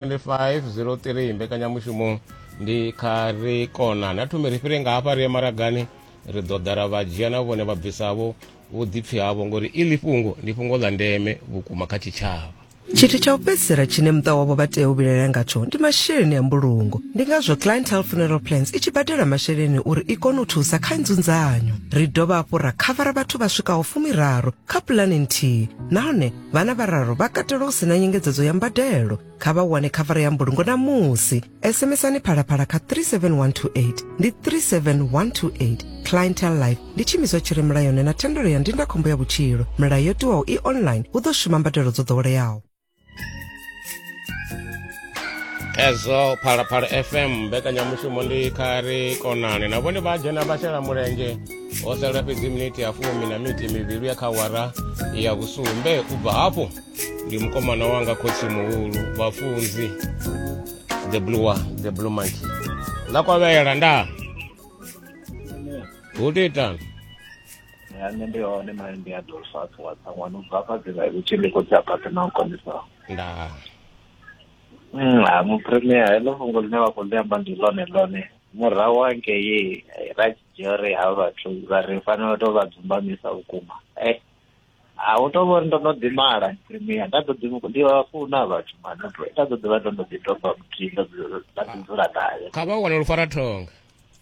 2503 mbekanyamushumo ndi kha ri kona na thome ri fhire nga hafha ri ye maragani ri ḓo ḓa ra vha dzhia na vhone vhabvisavho vhuḓipfi havho ngori iḽi fhungo ndi fhungo ḽa ndeme vhukuma kha tshitshavha tshithu tsha u fhedzisela tshine muṱa wavho vha tea u vhilaela ngatsho ndi masheleni a mbulungo ndi ngazwo clientele funeral plans i tshi badela masheleni uri i kone u thusa kha nzunzanyo ri dovha hafhu ra khavara vhathu vha swikaho fumiraru kha pulane nthihi nahone vhana vhararu vha katelwa u si na nyengedzedzo ya mbadelo kha vha wane khavara ya mbulungo na musi sms-ani phalaphala kha 37128 ndi 37128 clientel life ndi tshimiswa tshi re mulayoni na thendelo ya ndindakhombo ya vhutshilo milayo yo tiwaho i online hu ḓo shuma mbadelo dzo ḓoweleaho ezo phalaphala fm mbekanyamushumo ndi khari konani na vhone vha dzhena vha shela mulenzhe ho sala fhedzi miniti ya fumi na miniti mivhili ya kha wara ya vhusumbe u bva hafho ndi mukomana wanga khotsi muhulu vhafunzi the blue the blue monkey ḽa kwavhela nda hu titani ya nṋe ndi hone mali ndi a ḓo fa athu wa tsa ṅwana ubva afha dzi ngai vhutshi ndi khou dza phatha na u kondisaho nda mm, ha mupremia heḽo fhungo ḽine vha khou ḽi amba ndi ḽone ḽone murahu hangei eh, ra tshi dzhia uri ha vhathu vha ri fanela u tou vha dzumbamisa vhukuma e a hu tou vhori ndo no ḓimala premier nda ḓo ḓi ndi vha funa vhathu mano nda ḓo ḓi vha ndo no ḓi doba muthihi ndo dzula- nda ḓi dzula naye kha vha wane lufara thonga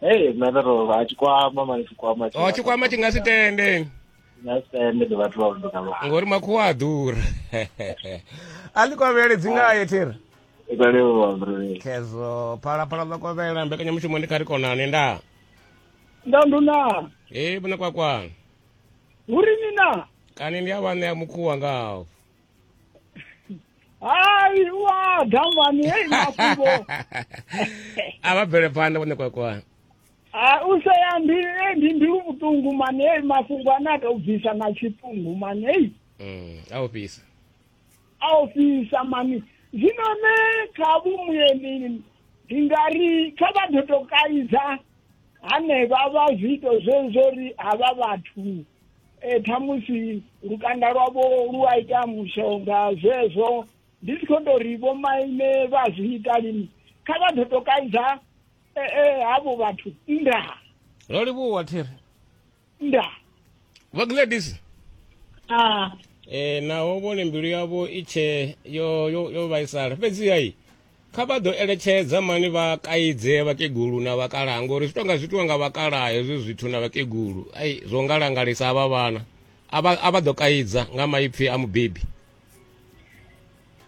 Hey, nṋe ndo tou vha tshikwama mani tshikwama o Oh, tshikwama tshi nga si tende nga sitende ndi vhathu vha vhuḓa vha ngori makhuwa a ḓura a ḽi kovhele dzi ngaye thera ikwalewa mbrele khezwo phalaphala ḽa kovhela mbekanyamushumo ndi kha ri konane nda nda nduna e vhona kwakwana uri ni na kani ndi a vhaṋea mukhuwa ngaho Hai, wa gambani, hei mafhungo. a vha bvele phanḓa vhone kwakwa Ah, u sea ndi eh, ndi ndi vhuṱungu mani, hei mafhungo ane a tou bvisa na tshiṱungu mani, hei. Mm, a u fhisa a ofisa mani zwino ne kha vhumuyeni ndi nga ri kha vha ḓo to kaidza hanevha vha zwiito zwezwo ri havha vhathu e, ṱhamusi lukanda lwavho lu a ita mushonga zwezwo ndi si khou tou ri vhomaine vha zwi ita lini kha vha ḓo to kaidza e, e, havho vhathu nndaa ro livhuwa thiri nndaa vha gladys Ah, e, naho vhone mbilu yavho i tshe yo, yo, yo vhaisala fhedziha i kha vha ḓo eletshedza mani vha kaidze vhakegulu na vhakalaha ngori zwi tonga zwi itiwa nga vhakalaha hezwi zwithu na vhakegulu ai zwo nga langalisa havha vhana a vha ḓo kaidza nga maipfi a mubebi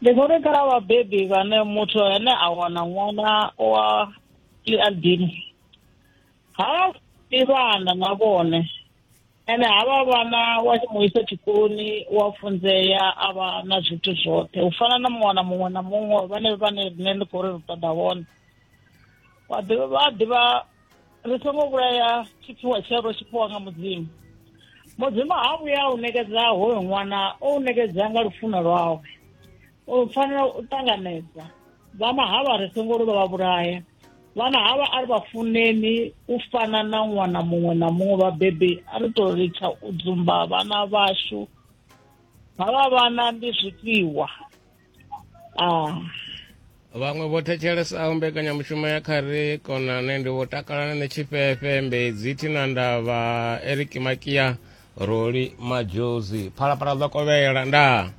ndi vhori khala vhabebi vhane muthu ane a wana ṅwana wa liadini ha ivhana na vhone ene havha vhana wa mu isa tshikoloni wa funzea a vha na zwithu zwoṱhe u fana na muṅwana muṅwe na muṅwe vhane vhane rine ndi khou ri ri ṱoḓa vhone vha ḓivha ri songo vhulaya tshiphiwa tsheo ro tshiphiwa nga mudzimu mudzimu ha vhuya u nekedza hoyo ṅwana o u nekedza nga lufuno lwawe u fanela u ṱanganedza vha mahava ri songo ri vha vhulaya vhana havha a ri vha funeni u fana na ṅwana muṅwe na muṅwe vhabebi a ri tou litsha u dzumba vhana vhashu havha vhana ndi zwifhiwa a vhaṅwe vho thetshelesa mbekanyamushumo ya kha ri konane ndi vho takalana ni tshifhefe mbedzi thina ndavha eric makia roli majozi phalaphala ḓo kovhela ndaa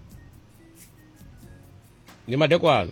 ndi madekwana